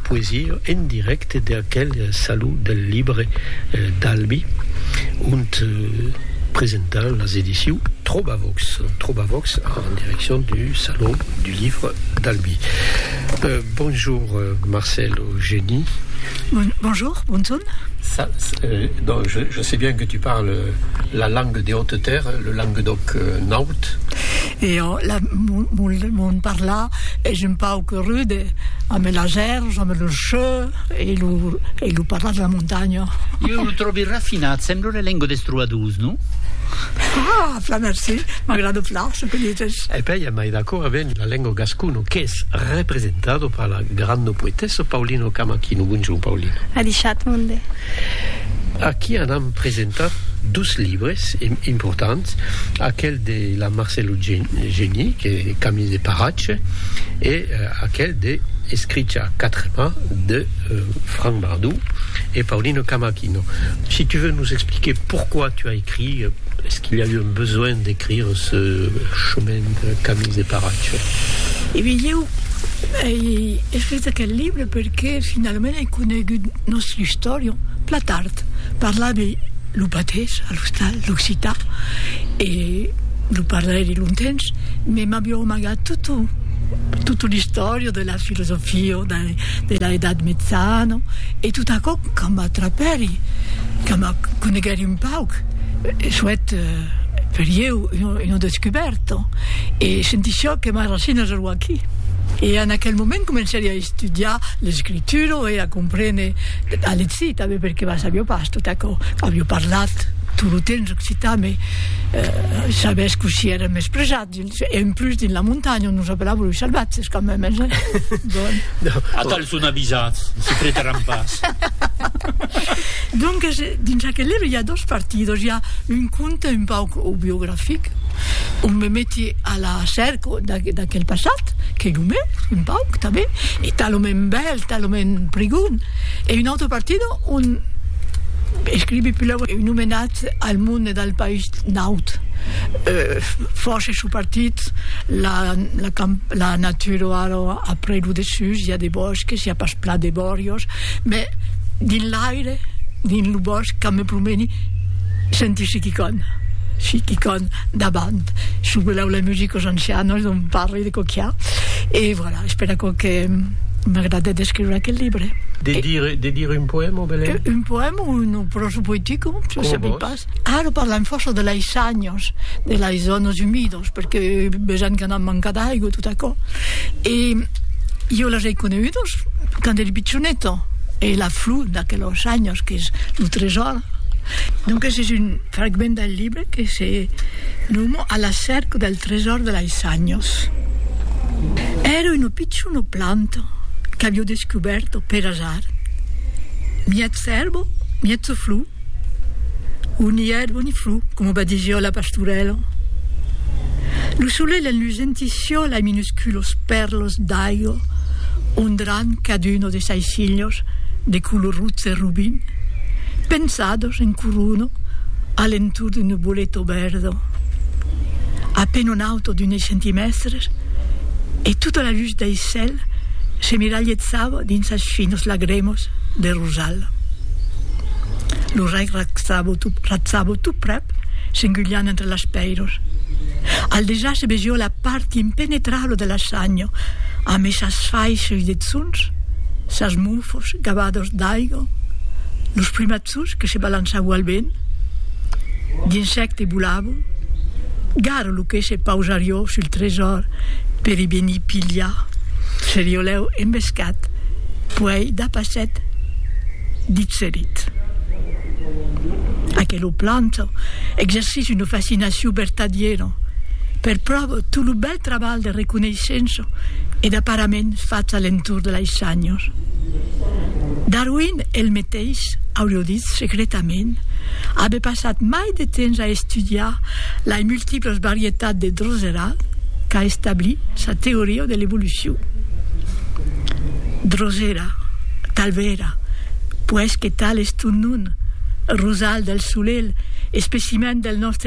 Poesia en dirècte de aquel Saló del Libre d'Albi, ont presentan las ediciu Trobavox, Trobavox en direccion du Saló du Livre d'Albi. Bonjour Marcèle Eugeni. Bonjour, bonson. Ça, donc je sais bien que tu parles la langue des hautes terres, le languedoc naut. E ò la mon mon parlar es un pauc rude ame las èrvs, ame lo cheu e lo e lo parlar de la montanha. Iu lo tròbi rafinat, sembla una lenga des trobadors, non? Ah! Plan merci, m'agrada plan çò que dites. E pèi amai d'acòrd avèn la lenga gascona qu'es representada per la granda poetessa Paulina Camachino. Bonjorn Paulina. Adishat monde. Aquí anam presentar dos libres importants, aquel. de la Marcelo Geni, que Camille de Paratge, e aquel de Escricha a quatre mans de Franck Bardou e Paulino Camachino. Si tu veux nous expliquer pourquoi tu as écrit, est-ce qu'il y a eu un besoin d'écrire ce chemin de Camille de Paratge? E ben ieu ei escrit aquel libre perque finalament ei conegut nòstre istorian plan tard. Parlavi lo patés, a l'ostal, l'occitan e lo parlairi lontens, me m'avió amagat totu, totu l'istòria de la filosofia de, de la Edat Metzana e tot aquò que m'atrapèri, que me coneguèri un pauc, soèt per ieu una descubèrta e sentissiá que mai racinas eró aquí. E en aquel moment comencèri a estudiar l'escritura e a comprene, a legir tanben. E per qué sabió pas tot aquò? Avió parlat tot lo temps occitan, mai sabés cossí èra mespresat dins, e en plus dins la montanha on nos apelavo los salvatges quand même, hein, bon. Atau son avisats, se pretaràn pas. Donques, dins aquel libre i a dos partidos, i a un conte un pauc aubiographic, on me meti a la cerca, d'aquel passat, qu'ei lo meu, un pauc, tanben, e talament bèl, talament prigon, e un autre partido ont escrivi pulau un omenatz al monde e dal país naut, fòrça çò partit, la la natura o ara a prei lo dessús i a de bòsques, i a pas plan de bòrios, mès dins l'aire, dins lo bòsc, quand me promeni, Sentisi qui con, si qui con davant, su quellau la musica os ancianos non parli de coquiar e voilà, espèra aquò que m'agrade d'escriure aquel libre. De dire, de dire un poèma, Belén? Un poèma o una pròsa poetica, se sabi pas. Ara parlam fòrça de lei sanhos, de lei zònas umidas, perque vejan que anam manca d'aiga, tot aquò. E jo las ei conegudas quand eri pichoneta, e la flor d'aquelos sanhos qu'es lo tresòr, Donques es un fragment del libre que se noma A la cèrca del tresòr de lais anhos. Èra una pichona planta qu'avió descubèrta per asar, miètz èrba, miètz flor, o ni èrba ni flor, coma va dire jo la pastorèla. Lo solelh enlusentissió lais minusculos pèrlos d'aiga ondrant caduna de Sei cilios de color rotze robin, pensados en corona a l'entorn d'un nuboleto verdo, a pen un auto d'unes centimèstres, e tota la lutz dei cèl s'emiralhetzava dins as finos lagremos de rosal. Lo rei ratzavo tot, ratzavo tot prèp, s'engulhant entre las pèiros. Al dejà se vesió la part impenetrabla de la sanha, amé sas faisses de Sonç sas monfos gabados d'aigo, los primatzos que se balançavo al vent, d'insècte volavo, garo lo que se pausarió sul tresòr per i venir pilhar, serió lèu embescat, puèi dapasset dit se dit. Aquelo planto exercís una fascinacion vertadiera, per pròvo tot lo bèl Trabalh de reconeishença e d'aparament fach a l'entorn de lais shanhos. Darwin el meteis aurio dit secretament aver passat mai de temps a estudiar lais multiplas varietats de droserat qu'a establir sa teoria de l'evolucion. Drosera, talvera, puèi que tal es ton nom, rosal del solelh, especiment del nòstre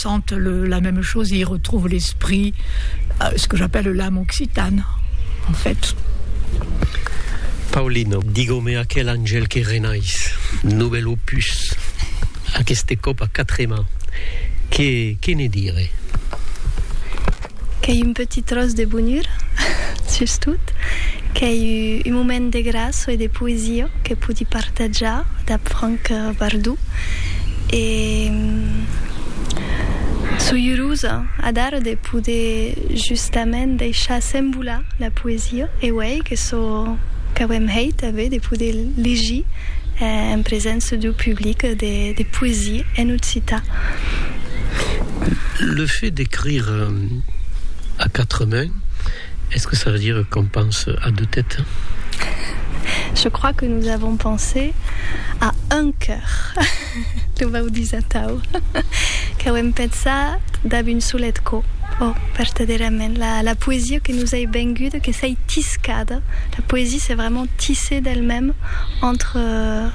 Sente la meme chose et y retrouve l'esprit, ce que j'appelle l'âme occitane, en fait. Paulina, digau-me aquel angèl que renais, novèl opus, aqueste còp a quatre mans, que, que ne dire? Qu'ei un petit tròç de bonura, sustot, qu'ei un moment de gràça e de poesia que podi partatjar dab Frank Bardou e soi urosa adara de poder justament deishar s'envolar la poesia e uèi que sò qu'auem hèit avé de poder legir en presença deu public de poesia en occitan. Le fait d'écrire à quatre mains, est ce que ça veut dire qu'on pense à deux têtes? Je crois que nous avons pensé à un cœur, lo vau dis atau, qu'auem pensat dab un solet cò, ò, vertadèrament, la la poesia que nous ei venguda, que s'ei tiscada, la poesia c'est vraiment tisser d'elle-même entre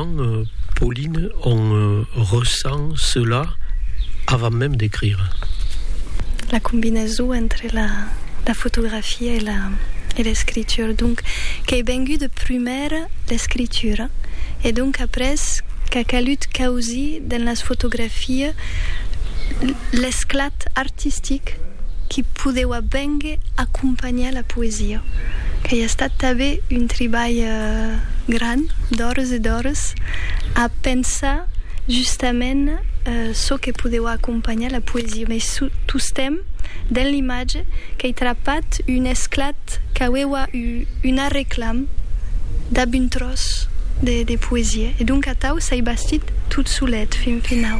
Quand Pauline en ressent cela avant même d'écrire. La combinaison entre la fotografia e l'escritura, donc qu'ei vengut de prumèr l'escritura e donc après qu'a calut causir dens las fotografias l'esclat artistic qui podeuà vénguer acompanhar la poesia, qu'ei estat tanben un tribalh gran d'ores e d'ores a pensar justament çò que podeu acompanhar la poesia, mès tostemp dens l'imatge qu'ei trapat un esclat qu'aueua un arreclam dab un tròç de poesia, e donc atau s'ei bastit tot solet fin finau.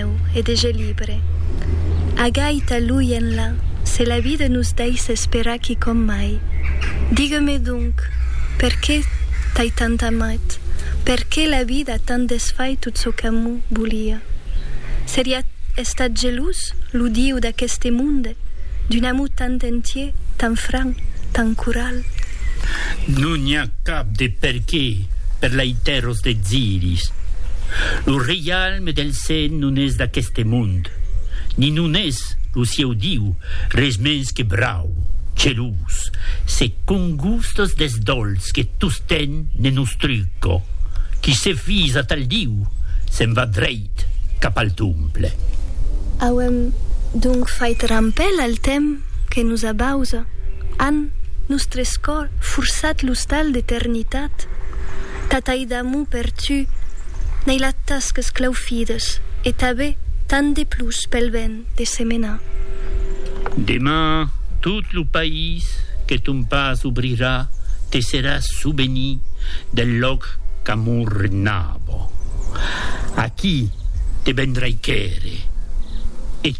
meu e de je libre. A gaita luienla, se la vida nos daissa esperar quicòm mai. Digue-me donc, per qué t'ai tant amat? Per qué la vida a tant desfait tot çò qu'amor volia? Seriá estat gelós lo Dieu d'aqueste monde d'un amor tant entier, tant franc, tant coral? Non i a cap de per qué per laitèros desiris. Lo Jalm del Sen non es d'aqueste mond, ni non es, lo sieu Diu, res mens que brau, gelós, se congustas deth dolç que tostemp ne nos truca. Qui se fís a tal Diu, se'n va dreit cap al Tomple. Auem donc fait rampèl al temps que nos abausa, an nostres cors forçat l'ostal d'eternitat. Tatai d'amor per tu, n'ai la tas que 's claufides, e tabe tant de plus pel ben de se menar. Deman tot lo país que ton pas obrirà te serà souveni del lòc qu'amor renava. Aquí te vendrai quèrre.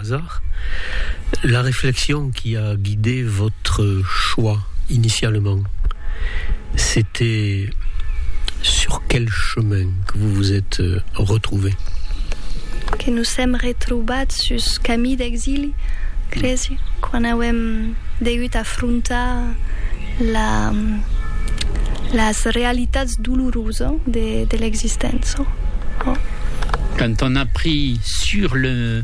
Hasard, la réflexion qui a guidé votre choix initialement, c'était sur quel chemin que vous vous êtes retrouvé? Que nos sèm retrobats sus camí d'exili, cresi, quan auem degut afrontar la las realitats dolorosa de de l'existença. Quand on a pris sur le.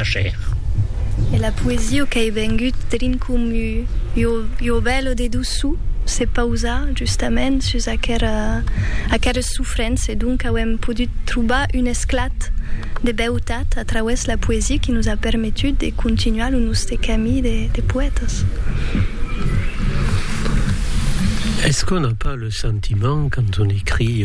Ager. E la poesia qu'ei vengut drin comu ua vela de doçu se pausa justament sus aqueres sofrents e donc auem podut trobar un esclat de beutat a trauès la poesia qui nos a permetut de continuar lo noste cami de poètas. Est-ce qu'on n'a pas le sentiment quand on écrit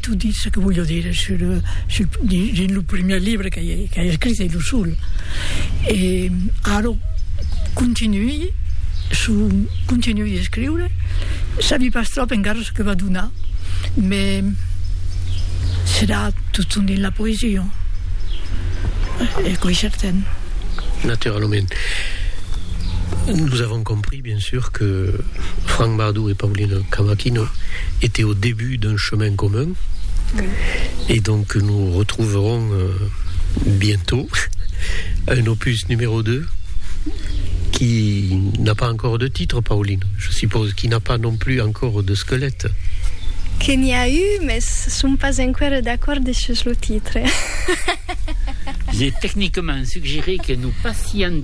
Tu dis ce que voglio dire sur, sur dins lo primièr libre qu'ai qu'ai escrit e lo sol. E ara continuï su continuï escriure, sabi pas trop encara ce que va donar, mais serà totun dins la poesia. Aquò es certain. Naturalament. Nous avons compris. Bien sûr que Franck Bardou et Paulina Cavaquinho étaient au début d'un chemin commun et donc nous retrouverons bientôt un opus numéro 2 qui n'a pas encore de titre, Pauline, je suppose, qui n'a pas non plus encore de squelette. Que n'i a eu, mès som pas enqüèra d'acòrdi sus lo titre. J'ai techniquement suggéré que nous passions.